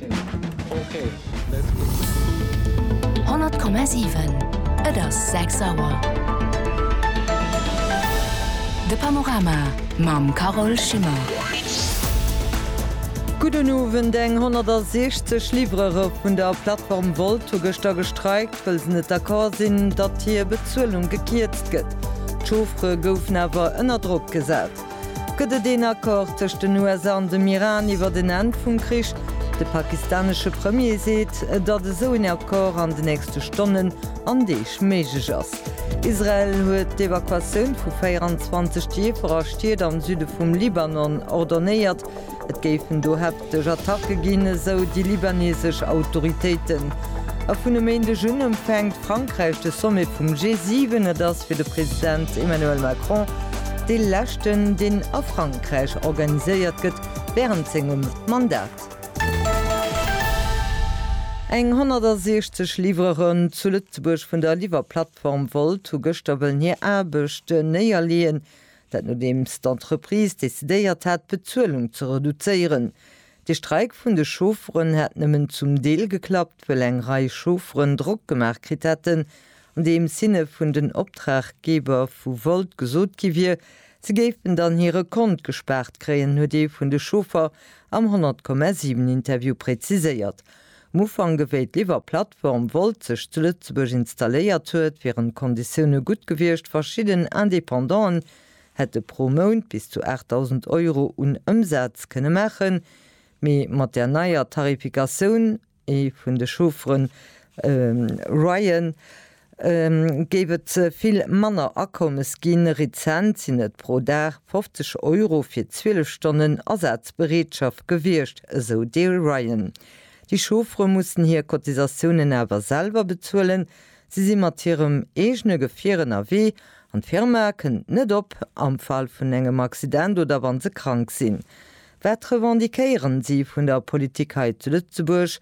100,7 Et ass 6 Auer. De Panorama mam Carole Schimmer. Gudden Owend. Eng 160 Livrere vun der Plattform Wolt hu gëschter gestreikt, wëll se net d'accord sinn, datt hir Bezuelung gekierzt gëtt. D'Chauffere goufen awer ënner Drock gesat. Gëtt et een Accord tëscht den USA an dem Iran iwwert en Enn vum Krich? De pakistanesche Premier seet, datt esou een Accord an de nächste Stonnen an Deeg méiglech ass. Israel huet d'Evakuatioun vu 24 Dierfer a Stied am Süde vum Libanon ordonéiert. Et géifen dohaer. Duerch Attacke ginn esou déi libanesesch Autoritéiten. A vun e Méindeg un empfänkt Frankräich de Sommet vum G7. Et ass fir de President Emmanuel Macron dee leschten, deen a Frankräich organiséiert gëtt wärend sengem Mandat. Eng 160 Livreuren zu Lëtzebuerg vun der Liwwerplattform Wolt hu gëschter wëllen hir Aarbecht néierleeën. Dat nodeems d'Entreprise decidéiert hat, d'Bezuelung ze reduzéieren. De Streik vun de Chaufferen hätt nëmmen zum Deel geklappt, wëll eng Rei Chaufferen Drock gemaach kritt hätten, andeems hinne vun den Optraggeber vu Volt gesot gi wier, se géifen dann hire Kont gespaart kréien, huet ee vun de Chauffer am 100,7 Interview präziséiert. Am Ufank, wéi d'Liwwer-Plattform Wolt sech zu Lëtzebuerg installéiert huet, wieren d'Konditioune gutt gewiescht, verschidden Independant'en hätte pro Mount bis zu 8.000 Euro un Ëmsaz kënne maachen, mee mat där neier Tarifikatioun, ee vun de Chaufferen, Ryan, géif et vill manner Akommes ginn. Rezent sinn et pro Dag 50 Euro fir 12 Stonnen Asazbereetschaft gewiescht, esou de Ryan. Déi Chauffere mussen hir Cotisatiounen awer selwer bezuelen. Si si mat hirem eegene Gefier ënnerwee an d'Firma kënnt net op am Fall vun engem Accident oder wa se krank sinn. Wat revendiquéieren si vun der Politik hei zu Lëtzebuerg?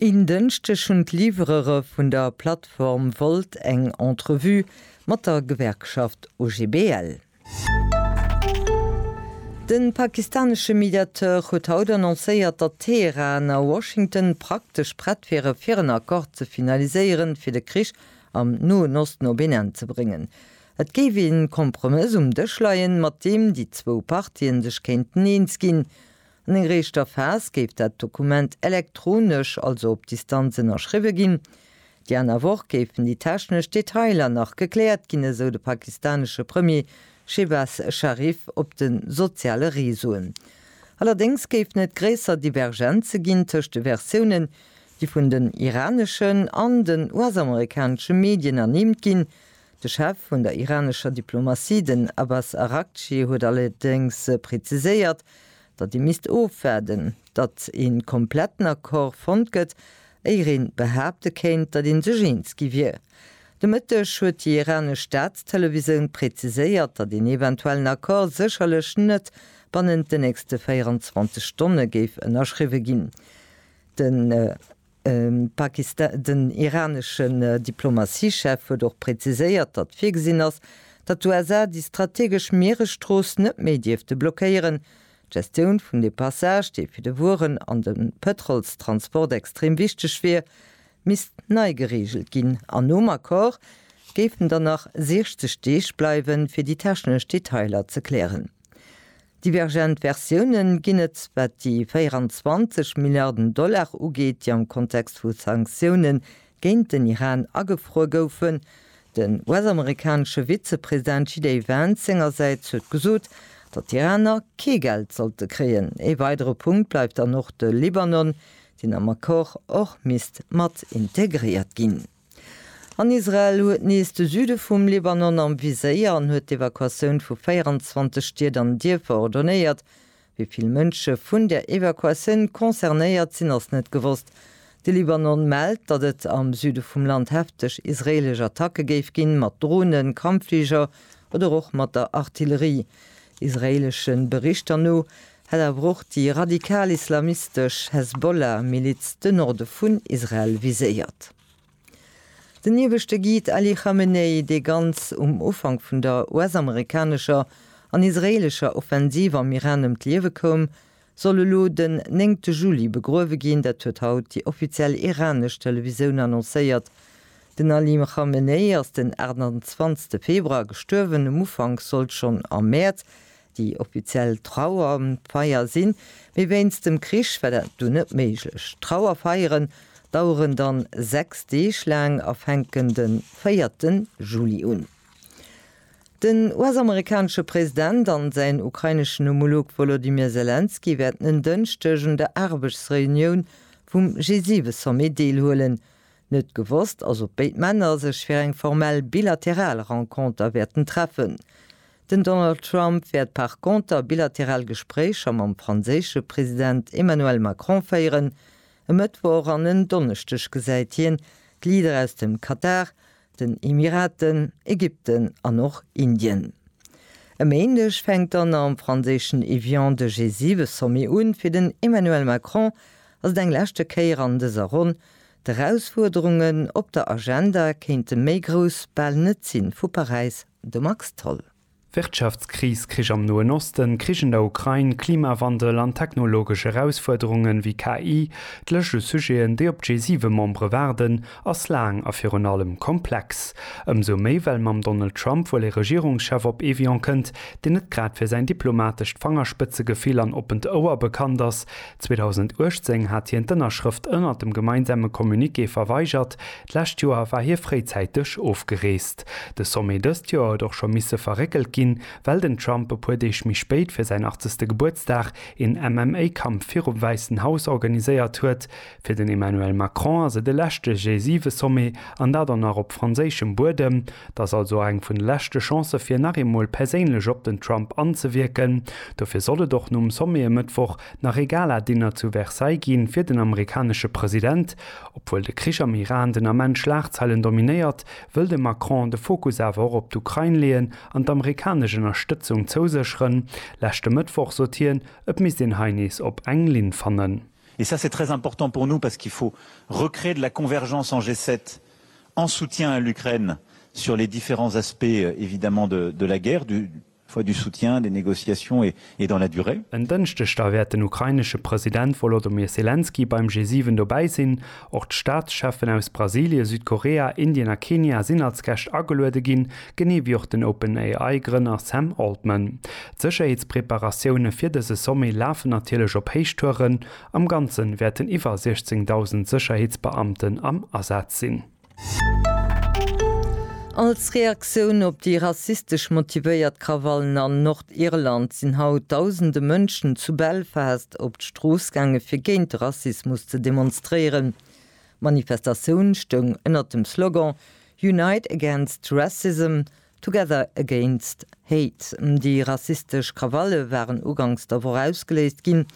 En Dënschdeg hunn d'Livrere vun der Plattform Wolt eng Entrevue mat der Gewerkschaft OGBL. De pakistanesche Mediateur huet haut annoncéiert, datt Teheran a Washington praktesch prett wiere fir en Accord ze finaliséieren, fir de Krich am Noen Osten op een Enn ze bréngen. Et géif ee Kompromëss um Dësch leien, mat deem déi zwou Partien sech kéinten eens ginn. An enger éischter Phas géif dat Dokument elektronesch, also op Distanz, ënnerschriwwe ginn. Déi aner Woch géifen déi technesch Detailer nach gekläert ginn, esou de pakistanesche Premier Shehbaz Sharif op de soziale Reseauen. Allerdéngs géifen et gréisser Divergenze ginn tëscht de Versiounen, déi vun den iraneschen an den US-amerikanesche Medien ernimmt ginn. De Chef vun der iranescher Diplomatie, den Abbas Araghchi, huet allerdéngs preziséiert, datt ee misst ofwaarden, datt ee kompletten Accord fonnt gëtt, éier een behaapte kéint, datt ee sech eens gi wier. De Mëtteg huet déi iranesch Staatstelevisoun preziséiert, datt een eventuellen Accord sécherlech net bannent den nächste 24 Stonne géif ënnerschriwwe ginn. Den. Den iraneschen Diplomatiechef huet och präziséiert, datt virgesinn ass, datt d'USA déi strategesch Mieresstrooss net méi dierfte blockéieren. D'Gestioun vun deem Passage, dee fir de Wueren an de Pëtrolstransport extrem wichteg wier, misst nei gereegelt ginn an nom Accord géifen dann nach 60 Deeg bleiwen, fir déi technesch Detailer ze klären. Divergent Versiounen ginn et, wat déi 24 Milliarden Dollar ugeet, déi am Kontext vu Sanktioune géint den Iran agefruer goufen. Den US-amerikanesche Vizepresident JD Vance sengersäits huet gesot, datt d'Iraner kee Geld sollte kréien. Ee weidere Punkt bleift dann och de Libanon, deen am Accord och misst mat integréiert ginn. An Israel huet nees de Süde vum Libanon am Viséier an huet d'Evakuatioun vu 24 Stied an Dierfer ordonéiert. Wéi vill Mënsche vun der Evakuatioun concernéiert sinn, ass net gewosst. De Libanon mellt, datt et am Süde vum Land hefteg israeelesch Attacke géif ginn, mat Dronen, Kampffliger oder och mat der Artillerie. Israeeleschen Berichter no Hätt awer och déi radikal-islamistesch Hezbollah-Miliz de Norde vun Israel viséiert. Den ieweschte Guide Ali Khamenei, dee ganz um Ufank vun der US-amerikanescher an israeelescher Offensiv am Iran ëm d'Liewe koum, soll elo den néngte Juli begruewe ginn. Dat huet haut déi offiziell iranesch Televisioun annoncéiert. Den Ali Khamenei ass den 28 Februar gestuerwen. Um Ufank sollt schonn am Mäerz Déi offiziell Trauerfeier sinn, mee wéinst dem Krich war dat dunn net méiglech. D'Trauerfeieren daueren dann 6 Deeg laang a fänken den 4 Juli un. Den US-amerikanesche President an säin ukraineschen Homolog Wolodymyr Selenskyj wäerten en Dënschdeg un der Aarbechtsreunioun vum G7-Sommet deelhuelen. Net gewosst ass, ob béid Männer sech fir eng formell bilateral Renconter wäerten treffen. Den Donald Trump wäert par conter bilateral Gespréicher mam franséische President Emmanuel Macron féieren. E Mëttwoch an en Donneschdeg gesäit hien d'Leader aus dem Katar, den Emiraten, Ägypten an och Indien. E Méindeg fänkt dann am franséischen Évian de G7-Sommet un. Fir den Emmanuel Macron ass et eng leschte Kéier an dëser Ronn. D'Erausfuerderungen op der Agenda kéinte méi grouss bal net sinn, vu Paräis de Max Tholl. Wirtschaftskris, Krich am Noen Osten, Krich an der Ukrain, Klimawandel an technologesch Erausfuerderungen wéi KI, d'Lëscht u Sujeten, déi op d'G7-Membere waarden, ass laang a virun allem komplex. Ëmsou méi, well mam Donald Trump wuel ee Regierungschef op Evian kënnt, deen net grad fir säin diplomatescht Fangerspëtzegefill an oppent Ouer bekannt ass. 2018 hat hien d'Ënnerschrëft ënnert dem gemeinsame Communiqué verweigert, D'lescht Joer war hie fréizäiteg ofgereest. De Sommet dëst Joer huet och scho misse verréckelt ginn, well den Trump e puer Deeg méi spéit fir säin 80. Gebuertsdag een MMA-Kampf virum Wäissen Haus organiséiert huet. Fir den Emmanuel Macron ass et e leschte G7-Sommet, an dat och nach op franséischem Buedem. Et ass also och eng vun de leschte Chancë fir nach eemol perséinlech op den Trump anzewierken. Dofir soll et och nom Sommet e Mëttwoch nach ee Gala-Dinner zu Versailles gi fir den amerikanesche President. Obwuel de Krich am Iran den Ament d'Schlagzeilen dominéiert, wëll de Macron de Fokus awer och op d'Ukrain leeën an d'amerikanesch Ënnerstëtzung zousécheren. Leschte Mëttwoch sot hien, et misst een hei nees op eng Linn fannen. Et ça c'est très important pour nous parce qu'il faut recréer de la convergence en G7 en soutien à l'Ukraine sur les différents aspects évidemment de la guerre, du. Choix du soutien, des négociations et dans la durée. En Dënschdeg da wäert den ukrainesche President Volodymyr Selenskyj beim G7 dobäi sinn. Och d'Staatscheffen aus Brasilie, Südkorea, Indien a Kenia sinn als Gäscht ageluede ginn, genee wéi och den OpenAI Grënner Sam Altman. D'Sécherheetspreparatioune fir dëse Sommet lafen natierlech op Héichtouren. Am Ganze wäerten iwwer 16.000 Sécherheetsbeamten am Asaz sinn. Als Reaktioun op déi rassistesch motivéiert Krawallen an Nordirland sinn haut dausende Mënschen zu Belfast op d'Strooss gaange fir géint de Rassismus ze demonstréieren. D'Manifestatioun stoung ënnert dem Slogan Unite against Racism, Together Against Hate. Déi rassistesch Krawalle waren uganks der Woch ausgeléist ginn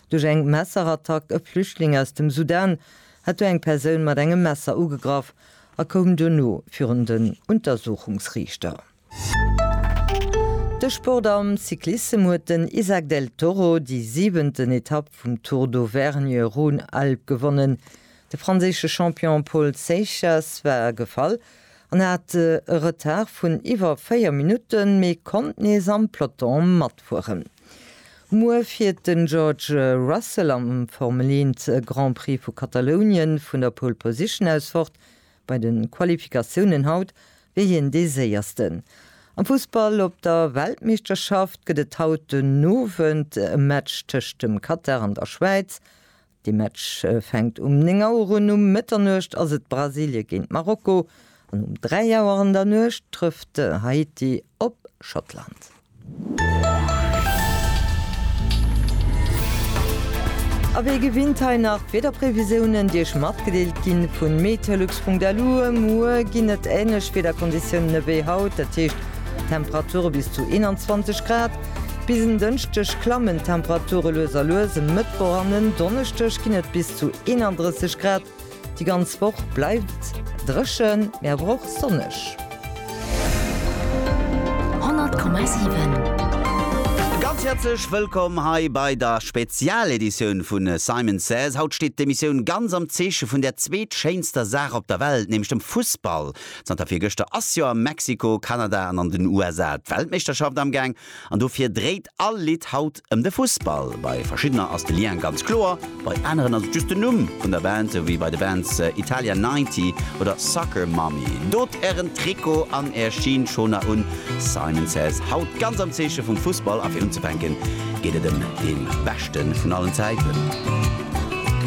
duerch eng Messerattack. E Flüchtling aus dem Sudan hat do eng Persoun mat engem Messer ugegraff a koum duerno virun den Untersuchungsriichter. De Sport am Cyclissem huet den Isaac Del Toro déi siwenten Etapp vum Tour d'Auvergne Rhône-Alpes gewonnen. De franséische Champion Paul Seixas war gefall En hat e Retard vun iwwer 4 Minutten, mee konnt nees am Peloton matfueren. Muer fiert den George Russell am Formel 1 Grand Prix vu Katalounien vun der Pole Position aus fort. Bei de Qualifikatiounen haut wier hien dee Séiersten. Am Fussball op der Weltmeeschterschaft gëtt et haut den Owend e Match tëscht dem Katar an der Schwäiz. De Match fänkt um 9 Auer un. Um Mëtternuecht ass et Brasilien géint Marokko an um 3 Auer an der Nuecht trëfft Haiti op Schottland. A wéi gewinnt hei nach d'Wiederprevisiounen, déi Iech matgedeelt ginn vun meteolux.lu. Muer ginn et änlech Wiederkonditiounen ewéi haut, dat heescht Temperature bis zu 21 Grad. Bis en Dënschdeg klammen d'Temperature lues a lues, e Mëttwoch an en Donneschdeg ginn et bis zu 31 Grad. Déi ganz Woch bleift dréchen, mee awer och sonneg. 100,7. Ganz häerzlech wëllkomm hei bei der Spezialeditioun vu Simon Says. Haut steet d'Emissioun ganz am Zeeche vun der zweetschéinster Saach op der Welt, nämlech dem Fussball. Zanter virgëschter ass jo a Mexiko, Kanada an an den USA d'Weltmeeschterschaft am Gaang an dofir dréit all Lidd haut ëm de Fussball. Bei verschiddener ass de Lien ganz kloer, bei aneren ass et just den Numm vun der Band, sou wéi bei de Bands Italia 90 oder Soccer Mommy. Dot ären Trikot an är Schinschoner un. Simon Says haut ganz am Zeeche vum Fussball a fir unzefänken geet et ëm dee beschte vun allen Zäiten.